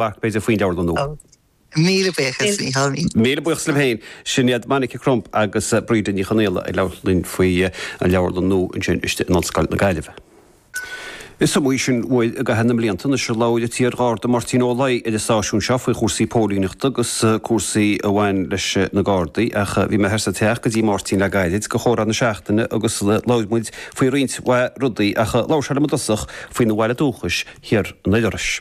Mharc, b'fhéidir, faoin leabharlann nua. Oh. Míle buíochas, a Mhícheáil. Bhí. Míle buíochas libh féin. Sin iad Monica Crump agus Bríde Ní Chonaola ag labhairt linn faoi an leabharlann nua ansin istigh in Ollscoil na Gaillimhe. Is iomaí sin uair i gcaitheamh na mblianta anois a labhair an t-iar-Gharda Máirtín Ó Laoi ar an stáisiún seo faoi chúrsaí póilíneachta agus cúrsaí a bhain leis na Gardaí ach bhí mé thiar sa teach go dtí Máirtín le gairid do chomhrá na seachtaine agus labhair muid faoi roinnt mhaith rudaí ach labhair sé liom i dtosach faoina bhaile dúchais, thoir i nDoire Iorrais.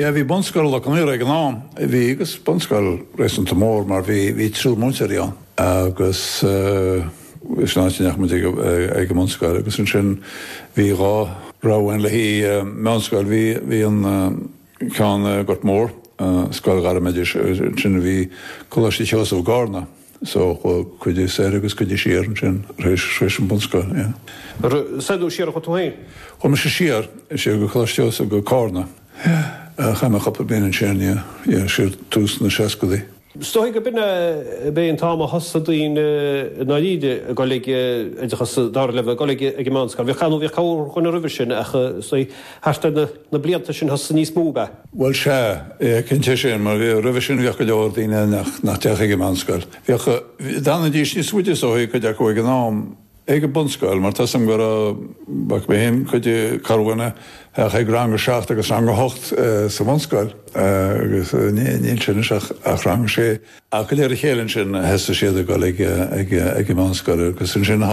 Sea, bhí bunscoil Loch Con Aortha ag an am. Bhí agus bunscoil réasúnta mór mar bhí, bhí triúr múinteoirí ann agus eh, sin an áit a ndeachaigh muid ag an mbunscoil agus ansin bhí dhá rogha ann le haghaidh, meánscoil, bhí, bhí an eh, ceann i nGort Mór, eh, scoil ghairmoideachais is ansin bhí Coláiste Sheosamh i gCarna. So, cuid soir agus cuid siar ansin, tar éis an bunscoil, yeah. Ar soir nó siar a chuaigh tú féin? Chuaigh mise siar, sea, go Coláiste Iósaef go Carna. Yeah. Chaith mé cupla bliain ansin, yeah. Yeah, siar tús na seascadaí. Is dóigh go b'in é an t-am a thosaigh daoine i ndáiríre ag dul ag oideachas dara leibhéal, ag dul ag an meánscoil. Bhíodh, nó bhíodh cabhair roimhe sin ach is dóigh, Thart ar na blianta sin thosaigh níos mó a. Bhuel sea, cinnte sin, mar bhí, roimhe sin bhíodh go leor daoine nach, nach dtéadh ag an meánscoil. Bhíodh, d'fhanaidís níos faide is dóichí cuid acu ag an am, ag an bunscoil mar tá a fhios agam go raibh, bhfaca mé fhéin, cuid de corrdhuine a théadh ag rang a seacht agus rang a hocht sa mbunscoil agus níl sé anois ach rang a sé. Ach de réir a chéile ansin thosaigh siad ag dul ag an meánscoil agus ansin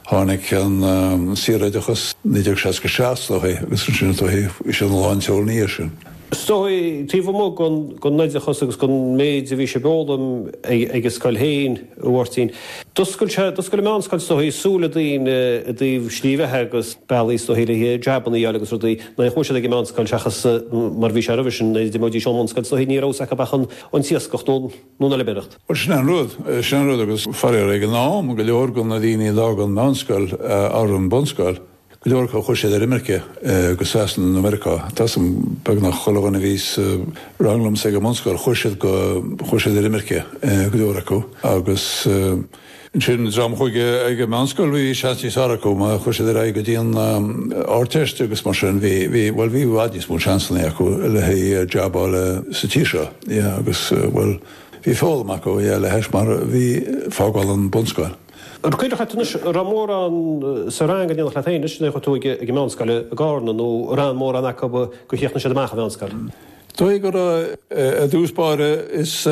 tháinig an saoroideachas 1967 is dóigh agus ansin is dóigh bhí siad faoi lán tseoil ina dhiaidh sin. Is dóigh taobh amuigh den oideachas agus den méid a bhí sibh a fhoghlaim ag an scoil féin a Mháirtín, d'oscail sé, d'oscail an mheánscoil is dóigh, súile daoine i dtaobh slí bheatha agus bealaí is dóigh le jabanna a fháil agus rudaí nach bhfuair siad ag an meánscoil seachas mar bhí sé roimhe sin, nuair a d'imeoidís ón mbunscoil is dóigh ní raibh fhios acu ach an an t-iascach nó an fheilméaracht. Bhuel, sin an rud. Sin an rud agus faraor ag an am, go leor de na daoine a d'fhág an mheánscoil or an bunscoil, go leor acu chuaigh siad ar imirce go Sasana nó Meiriceá. Tá a fhios agam beagnach chuile dhuine a bhí sa rang liomsa ag an mbunscoil, chuaigh siad go, chuaigh siad ar imirce go leor acu agus, Ansin, dream a chuaigh ag an meánscoil, bhí seans níos fearr acu má chuaigh siad ar aghaidh go dtí an Ardteist agus mar sin, bhí, bhí, bhuel bhí i bhfad níos mó seansannaí acu le haghaidh jab a fháil sa tír seo, yeah, agus bhuel, bhí foghlaim acu, yeah, le hais mar bhí fágáil an bunscoil. An cuimhneach leat anois, a' raibh mórán sa rang in éindí leat fhéin anois, nuair a chuaigh tú ag an meánscoil i gCarna nó a' raibh mórán acu gur chríochnaigh siad amach a' mheánscoil? Tuige gur, eh, i dtús báire is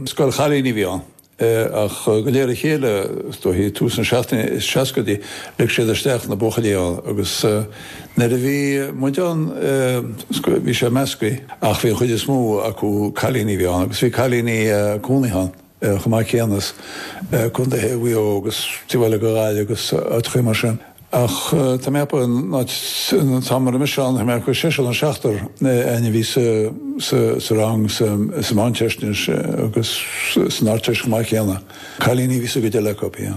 scoil chailíní a bhí ann. Ach go léir a chéile, is dóichí tús na seachtóidí, seascaidí, lig siad isteach na buachaillí ann agus nuair a bhí muid ann bhí sé measctha ach bhí an chuid is mó acu cailíní a bhí ann agus bhí cailíní cónaithe ann chomh maith céanna as Co. Mhaigh Eo agus Tuaim, Baile Átha go háirithe agus áiteachaí mar sin. Ach tá mé ag plé an áit tá mé anois ann, tá mé ag seisear nó seachtar againn a bhí sa rang sa Mheánteist agus san Ardteist chomh maith céanna. Cailíní a bhí sa gcuid eile acu, bhí.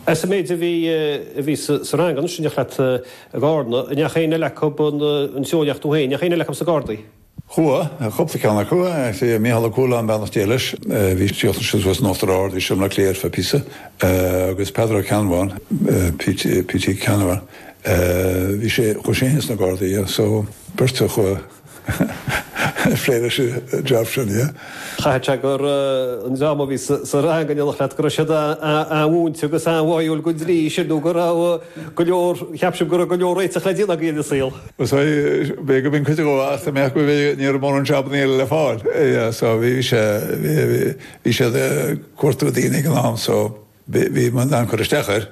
As an méid a bhí a bhí sa rang anois, in éineacht leat, a Gharda, an ndeachaigh éinne eile acu an an treo sin ach tú féin, an ndeachaigh éinne eile acu sna Gardaí? Chuaidh cúpla ceann acu, Mícheál Ó Cualáin, beannacht Dé leis, bhí sé ag dul thíos in Uachtar Ard go Seomra Cléir fe píosa, agus Peadar Ó Ceannabháin, P.T. Ceannabháin, bhí sé, chuaidh sé fhéin sna Gardaí, so beirt a chuaidh plé leis an jab sin. Chaithfeadh sé gur an dream a bhí sa rang in éineacht leat, go raibh siad an-mhúinte agus an-bháúil na Gardaí sin nó go raibh go leor, ceapaim go raibh go leor réiteach le déanamh agaibh in bhur saol. Sea, b'fhé' go mbíonn cuid acu ann nach mbeadh, ní raibh mórán jabannaí eile le fáil. So bhí sé, bhí siad ag cuartú daoine ag an am so bhí muid in ann cur isteach air.